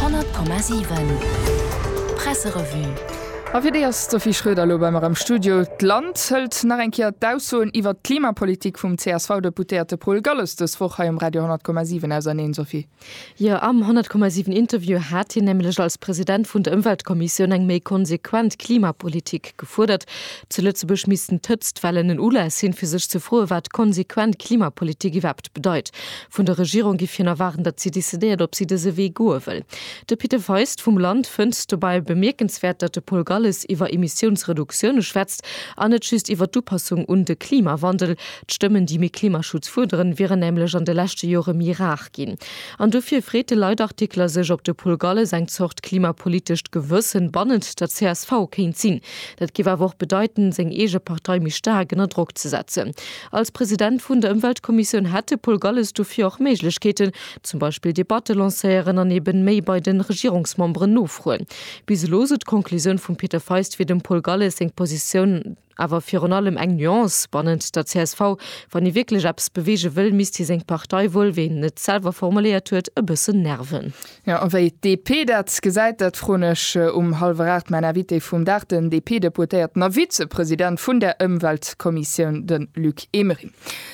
100,7 Presserevue A fir déi ass d'Sophie Schröder elo bei mer am Studio. D'Land hëlt nach eng Kéier d'Aussoen iwwert d'Klimapolitik vum CSV-Deputéierte Paul Galles dës Woch hei um Radio 100,7 auserneen, Sophie. Jo, am 100,7 Interview hat hien nämlech als President vun der Ëmweltkommissioun eng méi konsequent Klimapolitik gefuerdert. Zu Lëtzebuerg missten d'Hëtztwellen en Ulass sinn, fir sech ze froen, wat konsequent Klimapolitik iwwerhaapt bedeit. Vun der Regierung giff hien erwaarden, datt si decidéiert, ob si dëse Wee goe wëll. De Peter Feist vum Land fënnt dobäi bemierkenswäert, datt de Paul Galles iwwer Emissiounsreduktioune schwätzt an net just iwwer d'Upassung un de Klimawandel. D'Stëmmen, déi méi Klimaschutz fuerderen, wieren nämlech an de leschte Jore méi rar ginn. An dofir freet de Leitartikler sech, ob de Paul Galles eng Zort klimapolitescht Gewëssen bannent der csv kéint sinn. Dat géif awer och bedeiten, seng eege Partei méi staark ënner Drock ze setzen. Als President vun der Ëmweltkommissioun hätt de Paul Galles dofir och Méiglechkeeten, zum Beispill Debatte lancéieren an eben méi bei de Regierungsmemberen nofroen. Bis elo, sou d'Conclusioun vum Peter Feist, wier dem Paul Galles seng Positioun awer virun allem eng Nuance bannent der csv. Wann hie wierklech eppes beweege wëll, misst hie seng Partei wuel, wéi en et selwer formuléiert huet, e bëssen nerven. Jo, a wéi d'DP dat gesäit, dat froen ech um hallwer aacht mäin Invité vum Dag, den DP-Deputéierten a Vizepresident vun der Ëmweltkommissioun, de Luc Emering.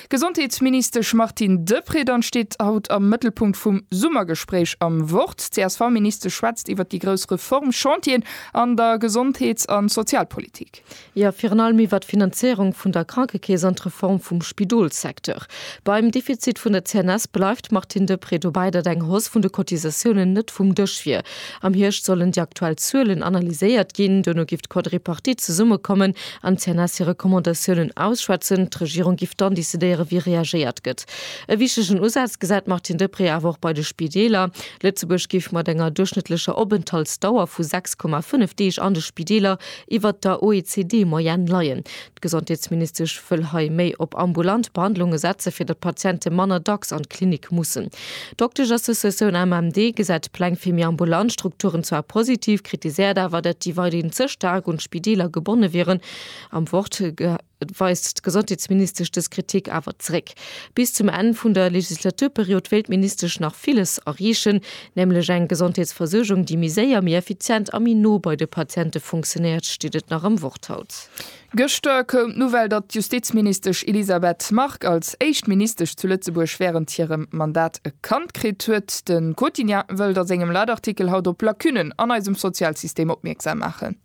D'Gesondheetsministesch Martine Deprez dann steet haut am Mëttelpunkt vum Summergespréich am Wort. D'CSV-Ministesch schwätzt iwwer déi grouss Reformchantieren an der Gesondheets a Sozialpolitik. Jo, virun allem iwwert d'Finanzéierung vun der Krankekeess an d'Reform vum Spidolssecteur. Beim Defizit vun der CNS bleift d'Martine Deprez dobäi, datt eng Hausse vun de Cotisatiounen net vum Dësch wier. Am Hierscht sollen déi aktuell Zuelen analyséiert ginn. Duerno géif d'Quadripartite zesummekommen an d'CNS hir Recommandatiounen ausschwätzen. D'Regierung géif dann decidéieren, wéi reagéiert gëtt. E wichtegen Usaz gesäit d'Martine Deprez awer och bei de Spideeler. Lëtzebuerg géif mat enger duerchschnëttlecher Openthaltsdauer vu 6,5 Deeg an de Spideeler iwwert der OECD-Moyenne leien. D'Gesondheetsministesch wëll hei méi op ambulant Behandlunge setze fir datt d'Patiente manner dacks an d'Klinik mussen. D'Doktesch-Associatioun AMMD gesäit d'Pläng fir méi ambulant Strukturen zwar positiv, kritiséiert awer, datt déi weiderhin ze staark un d'Spideeler gebonne wieren. Am Wort Et weist d'Gesondheetsministesch dës Kritik awer zeréck. Bis zum Enn vun der Legislaturperiod wéilt d'Ministesch nach villes erreechen, nämlech eng Gesondheetsversuergung, déi méi séier, méi effizient a méi no bei de Patiente funktionéiert, steet et nach am Wort haut. Gëschter koum d'Nouvelle, datt d'Justizministesch Elisabeth Margue als éischt Ministesch zu Lëtzebuerg wärend hirem Mandat e Kand kritt huet. De Quotidien wëllt a sengem Leitartikel haut op Lacunnen an eisem Sozialsystem opmierksam maachen.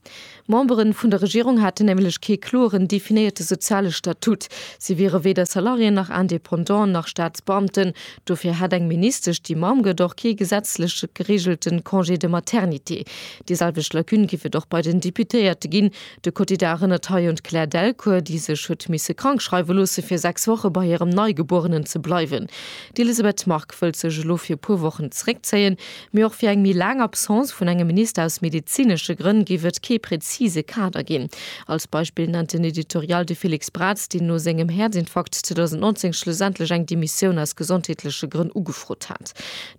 D'Memberen vun der Regierung haten nämlech kee kloren definéierte soziale Statut. Si wiere weder Salarié nach Indépendant nach Staatsbeamten. Dofir hätt eng Ministesch, déi Mamm gëtt, och kee gesetzlech gereegelte Congé de maternité. Déi selwecht Lacune géif et och bei den Deputéierte ginn. De Quotidien erënnert hei un d'Claire Delcourt, déi sech huet misse krank schreiwe loosse fir sechs Woche bei hirem Neigebuerenen ze bleiwen. D'Elisabeth Margue wëllt sech elo fir e puer Wochen zeréckzéien. Mee och fir eng méi laang Absence vun engem Minister aus medezinesche Grënn géif et kee prezise Kader ginn. Als Beispill nennt den Editorial de Felix Braz, deen no sengem Häerzinfarkt 2019 schlussendlech eng Demissioun aus gesondheetleche Grënn ugefrot hat.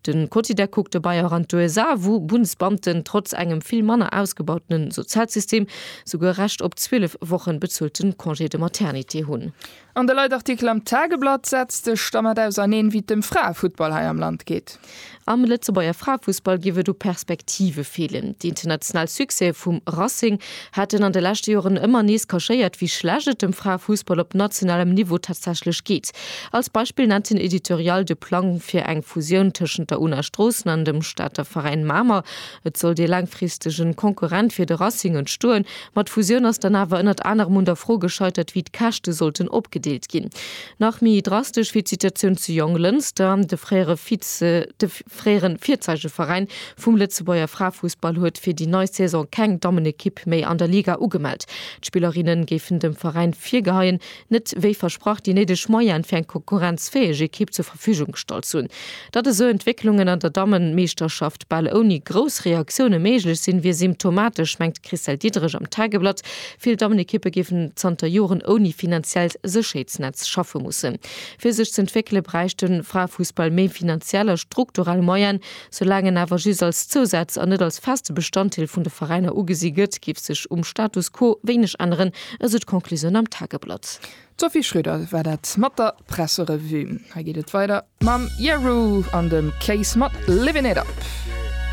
De Quotidien kuckt dobäi och an d'USA, wou Bundsbeamten trotz engem vill manner ausgebautene Sozialsystem souguer Recht op 12 Woche bezzuelte Congé de maternité hunn. An de Leitartikel am Tageblatt setzt sech dermat auserneen, wéi et dem Fraefuttball hei am Land geet. Am Lëtzebuerger Fraefussball géif et u Perspektive feelen. Déi international Succèse vum Racing haten an de leschte Joren ëmmer nees kaschéiert, wéi schlecht et dem Fraefussball op nationalem Niveau tatsächlech geet. Als Beispill nennt den Editorial de Plang fir eng Fusioun tëschent der Una Stroossen an dem Stater Veräin Mamer, Et sollt ee laangfristegen Konkurrent fir de Racing entstoen, ma d'Fusioun ass dann awer ënnert anerem un der Fro gescheitert, wéi d'Käschte sollten opgedeelt ginn. Nach méi drastesch wier d'Situatioun zu Jonglënster. De fréiere Vize de fréieren Virzeigeveräin vum Lëtzebuerger Fraefussball huet fir déi nei Saison keng Dammenekipp méi an der Liga ugemellt. D'Spillerinne géifen dem Veräin virgeheien, net wéi versprach déi néideg Moyene fir eng konkurrenzfäeg Ekipp zur Verfügung gestallt hunn. Datt esou Entwécklungen an der Dammemeeschterschaft bal ouni grouss Reaktioune méiglech sinn, wier symptomatesch, mengt d'Christelle Diederich am Tageblatt. Vill Dammenekippe géifen zanter Joren ouni finanziellt Sécherheetsnetz schaffe mussen. Fir sech z'entwéckele bräichte Fraefussball méi finanziell a strukturell Moyene. Soulaang en awer just als Zousaz an net als feste Bestanddeel vun de Veräiner ugesi gëtt, géif sech um Status quo wéineg änneren, esou d'Conclusioun am Tageblatt. D'Sophie Schröder war dat mat der Presserevue. Hei geet et weider mam Jeru an dem Case mat Livin' It Up.